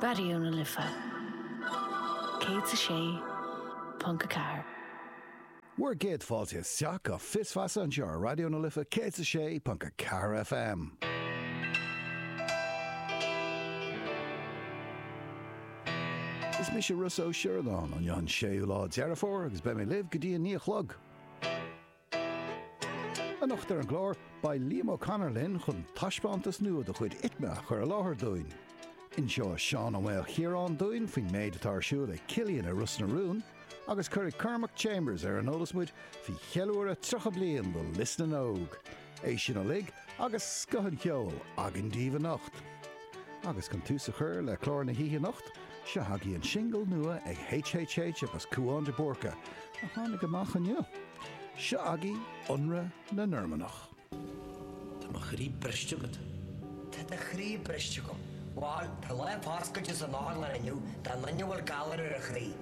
Raidió na Life 106.4. Bhur gcéad fáilte isteach go Fios Feasa anseo ar Raidió na Life 106.4 FM. Is mise Rossa Ó Sioradáin, inniu an 6ú lá Deireadh Fómhair agus beidh mé libh go dtí a naoi a chlog. Anocht ar an gclár, beidh Liam O'Connor linn chun taispeántas nua de chuid ITMA a chur i láthair dúinn. Inseoidh Seán Ó Maolchiaráin dúinn faoin méid atá ar siúl ag Cillian i Ros na Rún agus cuirfidh Cormac Chambers ar an eolas muid faoi cheiliúradh 30 bliain de Lios na nÓg. É sin uilig agus scoth an cheoil againn daoibh anocht. Agus chun tús a chur le clár na hoíche anocht, seo agaibh an singil nua ag HHH agus Cúán de Búrca, a tháinig amach inniu. Seo agaibh Ionradh na Normannach. Tá mo chroí briste agat. Tá do chroí briste agam. Bhuel, tá lá an Bhascaide san otharlann inniu do dhuine a bhfuil galar ar a chroí.